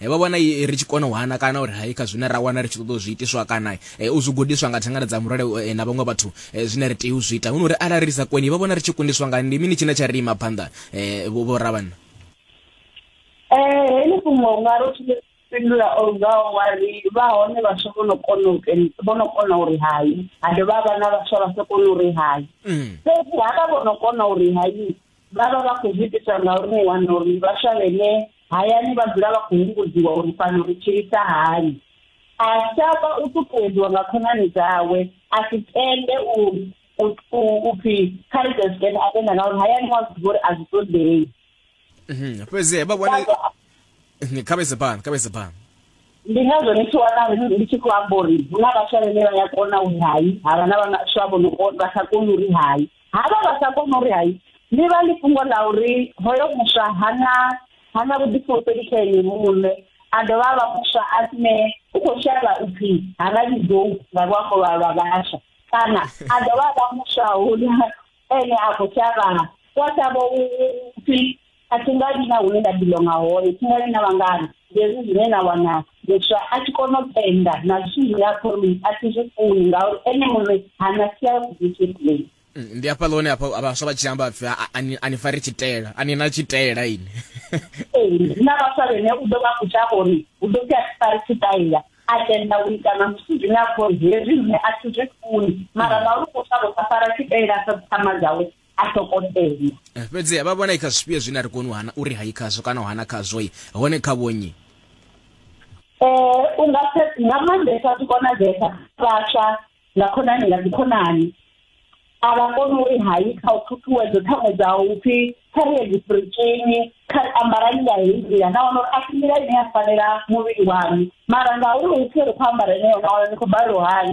e, vha vhona e, ri tshi kona u hana kana uri hai kha zwine ra wana ri tshi ṱoḓa u zwi itiswa kana e, u zwi gudiswa nga thangana dza murole e, na vhaṅwe vhathu e, zwine ri tea u zwi ita hu no uri arali ri sa koni vha vhona ri tshi kundiswa nga ndi mini tshine tsha ri ima phanḓa e, vho vho ravhanna e, heḽi fhungo nga ro tshi fhindula o ngaho wa ri vha hone vhaswa vho no kona u vho no kona uri hai ha dovha vha na vhaswa vha sa kona uri hai mm. fhedzi havha vho no kona uri hai vha vha vha khou zwi itiswa ngauri ni wana uri vhaswa vhene hayani vha dzula vha khou humbudziwa uri fhano ri tshilisa hani a shavha u ṱuṱuwedziwa nga khonani dzawe a si tende u u pfi kha ri ḓe a tenda ngauri hayani wa zwi uri a zwi ṱoḓei mhm, fhedzi vha vhone mhm, kha vhese phanḓa kha vhese phanḓa ndi ngazwo ni tshi wana ndi tshi khou amba uri hu na vhaswa vhene vha ya kona uri hai havha na vhaswa vho no vha sa koni uri hai Havha vha sa kona uri hai ni vha ḽi fhungo ḽa uri hoyo muswa hana hana vhuḓifulufheli kha ene muṋe a dovha a vha muswa a ne u khou shavha u pfhi ha nga vhidzou nga luambo lwa lwa vhaswa kana a dovha a vha muswa hune ene a khou shavha wa shavha u pfhi a thi nga vhi na hune nda bilonga hone thi nga vhi na vhangana hezwi zwine na wana muswa a tshi kona u tenda na zwithu zwine a khou ri a thi zwi funi ngauri ene muṋe hana sia discipline mm, ndi hafha ḽone hafha vhaswa vha tshi amba pfi a ni fari tshitela a ni na tshitela ini ee na vhaswa vhene u ḓo vha kutha uri u ḓo pfi a thi fari tshitaila a tenda u ita na zwithu zwine a khou ri hezwi zwine a thi zwi funi mara ngauri u khou shavha u sa fara tshitaila sa dzithama dzawe a ṱhogomela eh, fhedziha vha vhona i kha zwifhio zwine a ri koni hana uri hai khazwo kana u hana khazwo i hone kha vhonyi um u nga nga maanḓesa zwi konadzesa vhaswa nga khonani nga dzikhonani a vha koni uri hai kha u ṱhuṱhuwedzo ṱhaṅwe dza u pfhi kha ri ye dzipurikini kha ambarani nga heyi nḓila na wana uri a si nḓila ine ya fanela muvhili wanu mara ngauri u pfhi ri khou ambara ine yona wana ni khou balelwa hani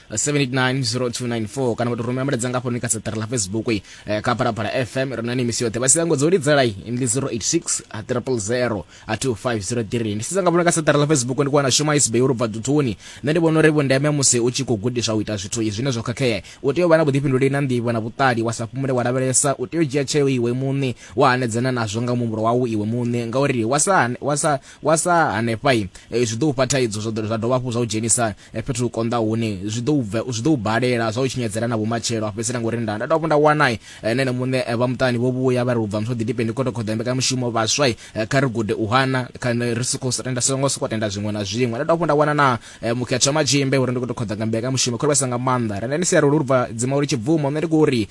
7890294 kana vhathu rumela mulaedza nga hafhononi kha seṱari la facebook eh, kha phalaphala fm ri na ni misi yoṱhe vha si tango dzo lidzela ndi 086 a triple 0 a 2503 ndi sidza nga vhona kha seṱari la facebook ndi kuwana shuma isbe yo rubva duthuni nṋe ndi vhona uri vhundeme musi u tshi khou gudiswa u ita zwithu zwine zwo khakhea u tea u vha na vhuḓifhinduleli na nḓivho na vhuṱali wa sa fhumule wa lavhelesa u tea u dzhia tsheo iwe muṋe wa hanedzana nazwo nga muhumbulo wau iwe muṋe ngauri wa sa wa sa wa sa hanefha eh, zwi ḓo u fha thaidzo zwa dovha hafhu zwa u dzhenisa fhethu hu konḓa hune zwi ḓo bva zwi ḓo balela zwa u tshinyadzela na vhumatshelo fhedzisela ngori nda nda dovha nda wana eh, na ene muṋe eh, vha muṱani vho vhuya vha ri ubva muthu ḓi dipeni koto khoḓa mbeka mushumo vhaswa eh, kha ri gude u hana kha ri soko tenda songo soko tenda zwiṅwe na zwiṅwe nda dovha nda wana na mukhetha matshimbe uri ndi koto khoḓa nga mbeka mushumo kha vhasa nga maanḓa renda ni siaro lurva dzima uri tshibvumo nṋe ndi kho uri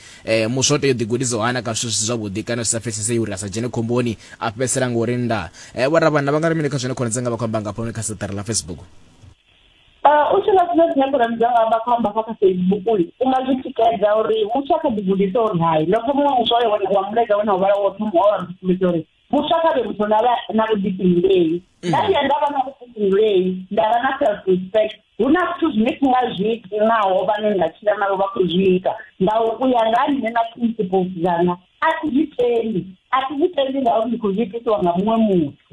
muswa tea u ḓi gudisa hana kha zwithu zwi zwavhuḓi kana zwi sa pfesesei uri a sa dzhene khomboni a fhedzisela ngori nda vho ra vhana vha nga ri mini kha zwine khonadzanga vha khou amba nga hafhanoni kha saṱari ḽa facebook Uh, u tshi nga zwine zwine khonani dza amba kho amba kha kha facebook uyu u nga zwi tikedza uri muthu a kha ḓi gudisa uri hai no pfa muṅwe muthu oyo wa muledza wena uvhala wo thoma wa risumbedza uri muthu a kha vhe muthu na na vhuḓifhinduleli mm. nda vhuya nda vha na vhuḓifhinduleli nda vha na self respect hu na zwithu zwine thi nga zwi iti naho vhane nda tshila navho vha khou zwi ita nga u ya nga nṋe na principles dzanga a thi zwi tendi a thi zwi tendi ngauri ndi khou zwi itisiwa nga muṅwe muthu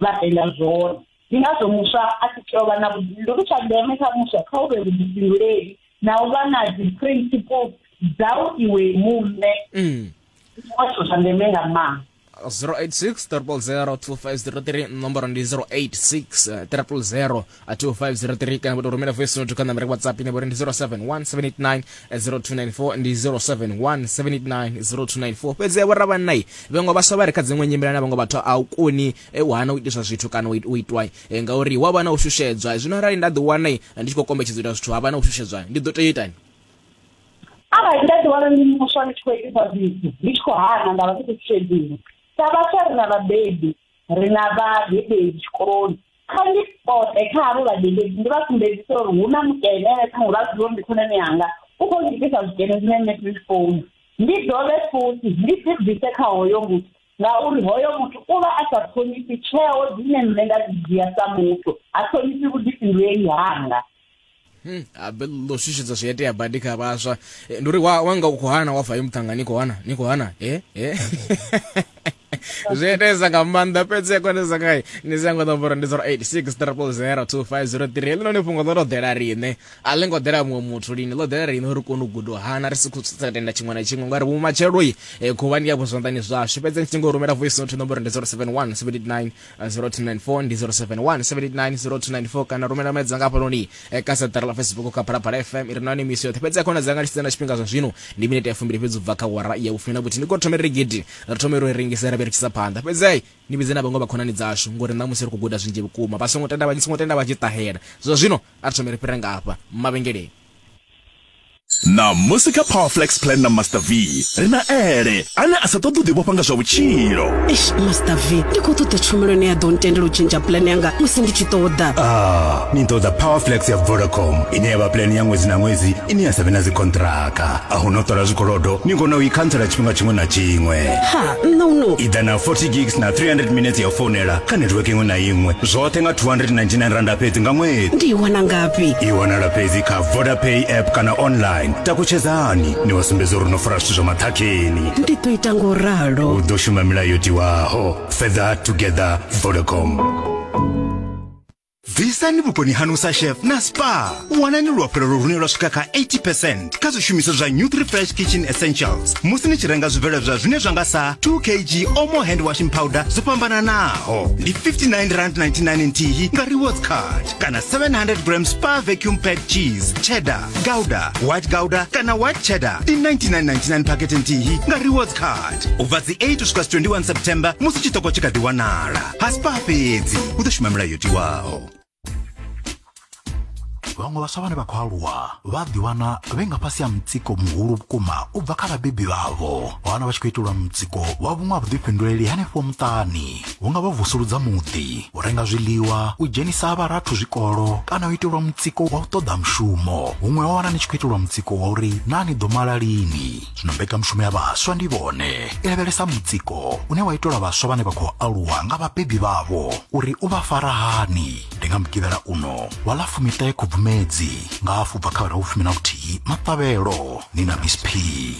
vha ela zwone ndi ngazwo muswa a tshi tea u vha na vhuḓifhinduleli tsha ndeme kha muswa kha u vhe vhuḓifhinduleli na u vha na dzi principles dzau iwe muṋe mm. zwithu zwa ndeme nga maanḓa 086 300 nomboro ndi 086 300 2503 kana vho tou rumela voice note kha nambara ya whatsapp ine vho ri ndi 0717890294 ndi 0717890294 fhedzi vho ravhannai vhaṅwe vhaswa vha re kha dziṅwe nyimela na vhaṅwe vhathu a u koni eh, u hana u itiswa zwithu kana u it- u itwa eh, ngauri wa vha na u shushedzwa zwino arali nda ḓiwana eh, ndi tshi khou kombetshedza u ita zwithu ha vha na u shushedzwa ndi ḓo tea itani arali nda ḓiwana ndi muswa ndi tshi khou itisa zwithu ndi tshi khou hana nda vha ndi khou tshedzini sa vhaswa ri na vhabebi ri na vhadededzi tshikoloni kha ndi pote kha havho vhadededzi ndi vha sumbedzisa uri hu na mukene ene ṱhaṅwe vha zwi uri ndi khonani yanga u khou ngitisa zwikene zwine nṋe ndi zwi founu ndi dovhe futhi ndi dzi bvise kha hoyo muthu ngauri hoyo muthu u vha a sa ṱhonifhi tsheo dzine nṋe nda dzi dzhia sa muthu ha ṱhonifhi vhuḓifhinduleli hanga Hmm, abe ḽo shushedza zwi itea badi kha vhaswa eh, ndi uri wanga u khou hana wa fa ye muṱhanga ni khou hana ni khou hana e eh, e eh. zwi itesa nga maanḓa fhedzi ya konesa ngai ni si yango ḓombora ndi 0863002503 ḽino ni fhungo ḽo to ḓela riṋe a ḽi ngo ḓela muṅwe muthu lini ḽo ḓela riṋe uri kone u guda u hana ri si khou tenda tshiṅwe na tshiṅwe ngauri vhumatshelo i khuvhani ya vhuzwanḓani zwashu fhedzi ni tshi ngo rumela voice note nomboro ndi 071 79 0294 ndi 0717890294 kana rumela mulaedza nga hafhanoni eh, kha saṱari la facebook kha phalaphala fm iri nani misi yoṱhe fhedzi ya khona dzanga lisitsa na tshifhinga zwa zwino ndi minete ya fumbili fhedzi ubva kha wara ya vhufumi na vhuthihi ndi khou thoma ri gidi ri thome ro i rengise ra vhe ri tshisa phanḓa fhedzi ai ni vhidze na vhaṅwe vhakhonani dzashu ngori ṋamusi ri khou guda zwinzhi vhukuma vha songo tenda vha songo tenda vha tshi ṱahela zwa zwino a ri thome ri fhire nga hafha mavhengeleni ṋamusi kha powerflex plan na master v ri na ele ane a sa ṱoḓi u ḓivhofha nga zwa vhutshilo eish master v ndi khou ṱoḓa tshumelo ine ya ḓo ntendela u tshentsha plan yanga musi ndi tshi ṱoḓa ah ni ṱoḓa powerflex ya vodacom ine ya vha plan ya ṅwedzi na ṅwedzi ine ya sa vhe na dzikontraka a hu no ṱola zwikolodo ni kona u i khantsela tshifhinga tshiṅwe na tshiṅwe ha nṋa u no i ḓa na 40 gigs na 300 minutes ya u founela kha network iṅwe na iṅwe zwoṱhe nga 299 randa fhedzi nga ṅwedzi ndi i wana ngafhi i wanala fhedzi kha vodapay app kana online takutshedzani ni vha sumbedza uri no fara zwithu zwa maṱhakheni ndi ḓo ita ngo ralo u ḓo shuma milayo yo tiwaho further together vodacom bvisani vhuponi hanu sa chef na spa wanani luafhulelo lune lwa swika kha 80 percent kha zwishumiswa zwa new 3 fresh kitchen essentials musi ni tshi renga zwibveledzwa zwine zwa nga sa 2 kg omo hand washing powder zwo fhambananaho ndi 59 rand 99 nthihi nga rewards card kana 700 grams pa vacuum pack cheese cheddar gouda white gouda kana white cheddar ndi 99.99 pakete nthihi nga rewards card ubva dzi 8 kusvika 21 september musi chitoko chikati wanala pasi pa fhedzi u ḓo shuma milayo tiwaho vhaṅwe vhaswa vhane vha khou aluwa vha ḓiwana vhe nga fhasi ha mutsiko muhulu vhukuma u bva kha vhabebi vhavho wana vha tshi khou itelwa mutsiko wa vhuṅwe ha vhuḓifhinduleli hanefho muṱani hu nga vha vusuludza muḓi u renga zwiḽiwa u dzhenisa vharathu zwikolo kana u itelwa mutsiko wa u ṱoḓa mushumo huṅwe wa wana ni tshi khou itelwa mutsiko wa uri naa ni ḓo mala lini zwino mbekanyamushumo ya vhaswa ndi vhone i lavhelesa mutsiko une wa itelwa vhaswa vhane vha khou aluwa nga vhabebi vhavho uri u vha fara hani ndi nga mugivhela uno wa ḽa fumiṱahe khubvumedzi nga afho bva kha vhera vhufumi na vhuthihi maṱavhelo ni na miss p